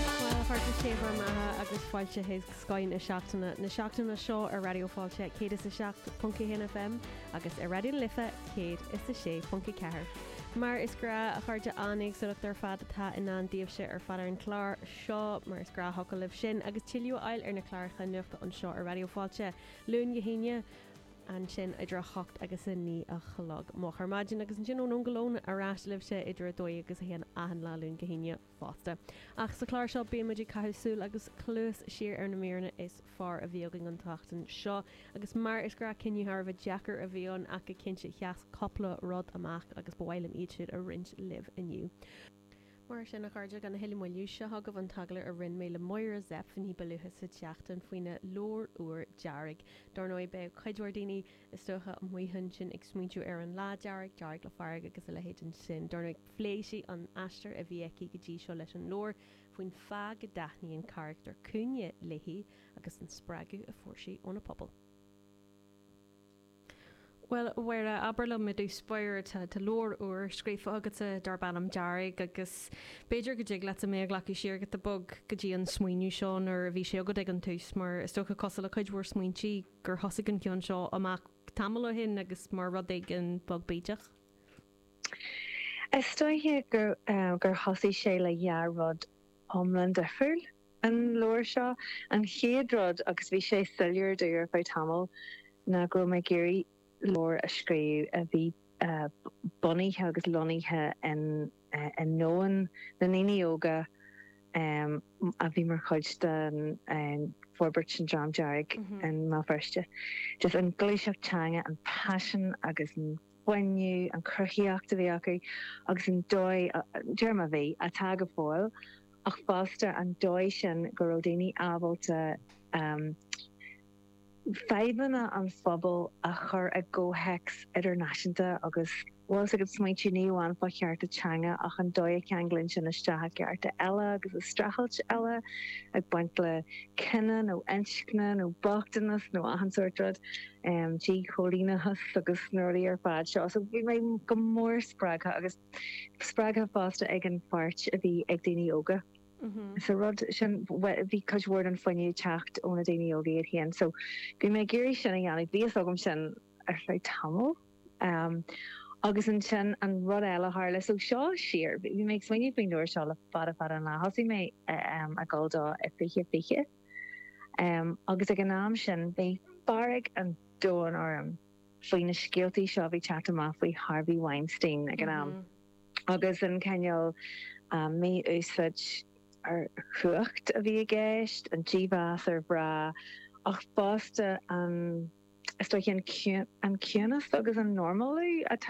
Bhuel, a chairde sé bhur mbeatha agus fáilte chuig Scoth na Seachtaine na seachtaine seo ar Raidió Fáilte 107.1 FM agus ar Raidió na Life 106.4. Mar is gnách, a chairde, an-éagsúlacht ar fad atá i ndán daoibhse ar fad ar an chlár seo. Mar is gnách thiocfadh libh sin agus tuilleadh a fháil ar na cláracha nuachta anseo ar Raidió Fáilte, Luan go hAoine, ansin idir 8 agus 9 a chlog moch ar maidin agus ansin ón Aon go Lón ar ais libhse idir 12 agus 1 achan lá Luan go hAoine. fosta. Ach sa chlár seo bíonn muid ag caitheamh súile agus cluas siar ar na míreanna is fearr a bhí againn an tseachtain seo agus mar is gnách cinneadh thar a bheith deacair a bhí ann ach go cinnte sheas cupla rud amach agus ba mhaith liom iad siúd a roinnt libh inniu. Mar sin, a chairde, gan a thuilleadh moille, seo chugaibh an t-agallamh a rinne mé le Máire Zepf ní ba luaithe sa tseachtain faoina leabhar úr, Dearg. Dar ndóigh beidh cuid mhór daoine. Is dócha, amuigh ansin ag smaointiú ar an Lá Dearg, Dearg le Fearg agus a leithéidí sin, dar ndóigh, phléigh sí an t-aistear a bhí aici go dtí seo leis an leabhar, faoin fáth go dtaitníonn carachtar Cúinne léithi agus an spreagadh a fuair sí óna pobal. Bhuel, a Mháire, abair liom i dtús báire, tá leabhar úr scríofa agatsa darb ainm Dearg agus b'fhéidir go dtig leatsa mé a ghlacadh siar go bog go dtí an smaoineamh seo nuair a bhí sé agat ag an tús mar is dócha, cosúil le cuid mhór smaointí, gur thosaigh an cionn seo amach tamall ó shin agus mar rud éigin beag bídeach? Is dóiche gur thosaigh sé le dhá rud iomlán difriúil, an leabhar seo. An chéad rud, agus bhí sé soiléir dom ar feadh tamaill, ná go raibh mé ag iarraidh leabhar a scríobh a bhí bunaithe agus lonnaithe in, i ndomhan na ndaoine óga a bhí mar chuid den fhorbairt sin An Dream Dearg i mBéal Feirste. Just an gluaiseacht teanga, an paisean agus an fuinneamh, an chruthaíocht a bhí acu agus an dóigh, deirim a bhí, atá go fóill ach fosta an dóigh sin go raibh daoine ábalta, fadhbanna an phobail a chur i gcomhthéacs idirnáisiúnta agus. bhfuil fhios agat, smaointe ní amháin fá chearta teanga ach an dóigh a cheanglaíonn sin isteach i gcearta eile agus i streachailt eile ag baint le cine nó inscne nó bochtanas nó achan sórt rud, díchoilíneachas agus na rudaí ar fad seo. So bhí mé go mór spreagtha agus spreagtha fosta ag an pháirt a bhí ag daoine óga. sa rud sin, bhí cuid mhór den fuinneamh ag teacht ó na daoine óga iad féin. So, bhí mé ag iarraidh sin a dhéanamh, bhí fhios agam sin ar feadh tamaill. Agus ansin an rud eile a tharla, so seo siar, bhí mé ag smaoineamh faoin leabhar seo le fada fada an lá, thosaigh mé a dhul dó i 2020 agus ag an am sin bhí fearg an domhain orm faoi na scéaltaí seo a bhí ag teacht amach faoi Harvey Weinstein ag an am. agus an cineál mí-úsáid ar chumhacht a bhí i gceist, an dímheas ar mhná, ach fosta an ciúnas agus an 'normálú' atá